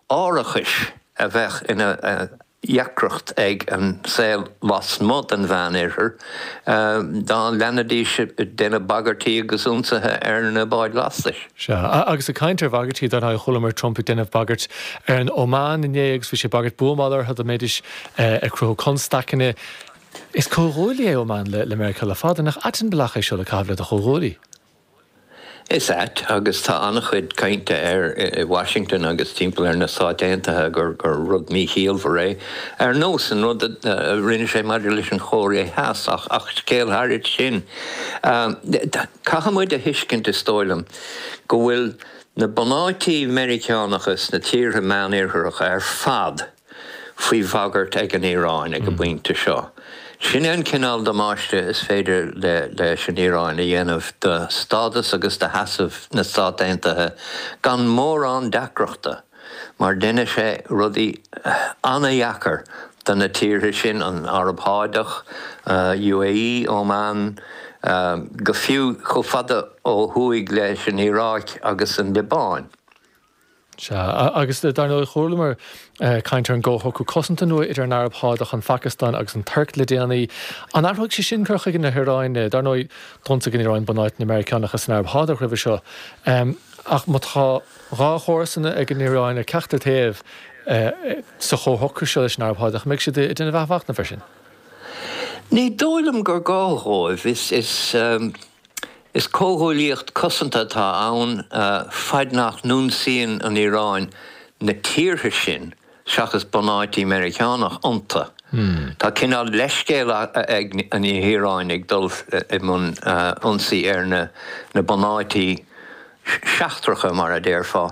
árachais a bheadh ina dheacracht ag an saol lasmuigh den Mheánoirthear dá leanfaidís ag déanamh bagairtí agus ionsaithe ar na báid lastais. Sea, agus ag caint ar bhagairtí, dar ndóigh, chualamar Trump ag déanamh bagairt ar an Óman inné agus bhí sé ag bagairt buamála orthu dá mbeidís ag cruthú constaiceanna. Is comhghuaillí é Óman le Meiriceá le fada, nach ait an bealach é seo le caitheamh le do chomhghuaillí? Is ait, agus tá an-chuid cainte air i Washington agus timpeall ar na Stáit Aontaithe, gur rud míchiallmhar é, ar nós an rud a rinne sé maidir leis an Chóiré Theas, ach scéal thairis sin. Caithfidh muid a thuiscint, is dóigh liom, go bhfuil na bunáití Meiriceánacha sna tíortha Meánoirthearacha ar fad, faoi bhagairt ag an Iaráin ag an bpointe seo. Sin é an cineál damáiste is féidir leis an Iaráin a dhéanamh do stádas agus do sheasamh na Stát Aontaithe gan mórán deacrachta, mar deineann sé rudaí ana-dheacair do na tíortha sin, an Araib Shádach, UAE, Óman, go fiú chomh fada ó thuaidh leis an Iaráic agus an Liobáin. Sea, agus dar ndóigh, chualamar caint ar an gcomhshocrú cosanta nua idir an Araib Shádach, an Phacastáin agus an Tuirc le déanaí. An athróidh sé sin cur chuige na hIaráine? Dar ndóigh, d'ionsaigh an Iaráin bunáiteanna na Meiriceánach san Araib Shádach roimhe seo. Ach má tá dhá chomharsana ag an Iaráin ar ceachtar taobh sa chomhshocrú seo leis an Araib Shádach, an mbeidh siad ag déanamh athmhachnamh air sin? Ní dóigh liom gur gá dhóibh. Is comhghuaillíocht cosanta atá ann, faid nach n-ionsaíonn an Iaráin na tíortha sin seachas bunáití Meiriceánach iontu. Tá cineál leithscéal ag an Iaráin ag dul i mbun ionsaí ar na bunáití seachtracha, mar a déarfá.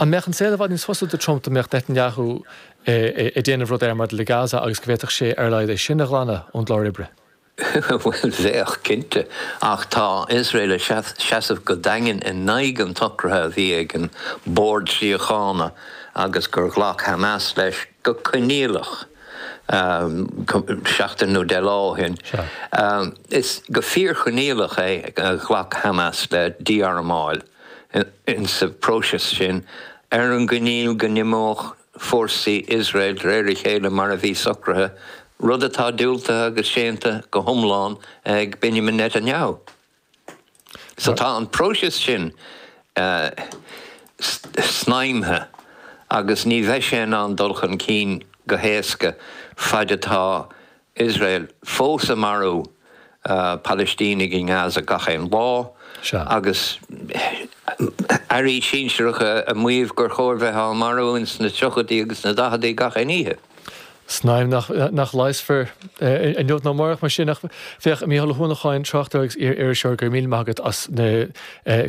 An mbeadh an saol i bhfad níos fusa do Trump dá mbeadh Netanyahu ag déanamh rud air maidir le Gaza agus go bhféadfadh sé ar a laghad é sin a ghlanadh ón gclár oibre? Bhuel, bheadh, cinnte. Ach tá Iosrael ag seasamh go daingean in aghaidh an tsocraithe a bhí ag an Bord Síochána agus gur ghlac Hamas leis go coinníollach seachtain nó deich lá ó shin. Is go fíorchoinníollach é a ghlac Hamas le dí-armáil. ins sa phróiseas sin, ar an gcoinníoll go n-imeódh fórsaí Iosrael de réir a chéile mar a bhí socraithe, rud atá diúltaithe agus séanta go hiomlán ag Benjamin Netanyahu. So tá an próiseas sin snaidhmthe agus ní bheidh sé in ann dul chun cinn go héasca faid atá Iosrael fós ag marú Palaistínigh i nGaza gach aon lá, agus airí sinsearacha ag maíomh gur chóir bheith á marú ins na tríochaidí agus na daicheadaí gach aon oíche. Snaidhm nach leigheasfar inniu ná amárach, mar sin, ach féach, Mícheál Ó hUanacháin, tráchtaire agus iar-iriseoir, go raibh míle maith agat as na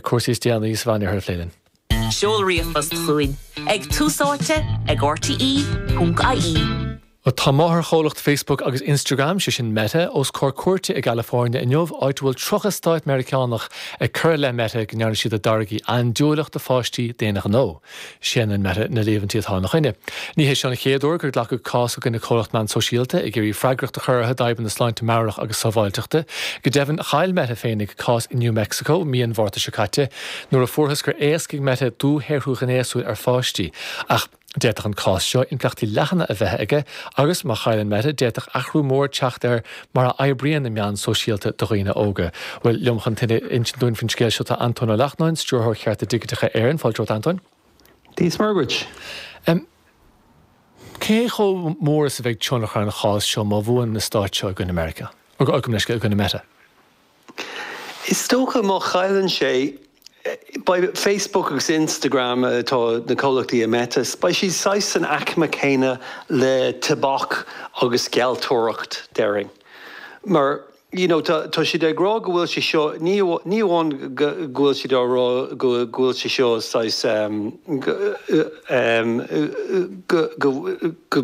cúrsaí is déanaí sa Mheánoirthear a phlé linn. Seol ríomhphost chugainn ag, tús áite ag, RTÉ.ie. Tá máthairchomhlacht Facebook agus Instagram, sé sin Meta, os comhair cúirte i gCalifornia inniu, áit a bhfuil 30 stát Meiriceánach ag cur i leith Meta go ndearna siad a dtáirgí andúileach do pháistí d'aon ghnó. Séanann Meta na líomhaintí atá ina choinne. Ní hé seo an chéad uair gur glacadh cás i gcoinne comhlacht meán sóisialta ag iarraidh freagracht a chur orthu d'fhadhbanna sláinte meabhrach agus sábháilteachta. Go deimhin, chaill Meta féinig cás i New Mexico mí an Mhárta seo caite, Nuair a fuarthas gur éascaigh Meta dúshaothrú ghnéasúil ar pháistí, ach d'fhéadfadh an cás seo impleachtaí leathana a bheith aige agus, má chailleann Meta, d'fhéadfadh athrú mór teacht ar mar a oibríonn na meáin sóisialta do dhaoine óga. Bhuel, liom chun tuilleadh a insint dúinn faoin scéal seo tá Antóin Ó Lachtnáin, Stiúrthóir Chearta Digiteacha Éireann. Fáilte romhat, Antóin. Dia 's Muire dhuit. Cé chomh mór is a bheidh tionchar an chás seo má bhuann na Stáit seo i gcoinne Mheiriceá, gabh mo leithscéal, i gcoinne Meta? Is dócha má chailleann sé, beidh Facebook agus Instagram, atá na comhlachtaí ag Meta, beidh siad saghas san aicme céanna le tobac agus gealltóireacht, déarfainn. Mar, you know, tá siad ag rá go bhfuil sé seo, ní amháin go bhfuil siad á rá go bhfuil sé seo saghas, go,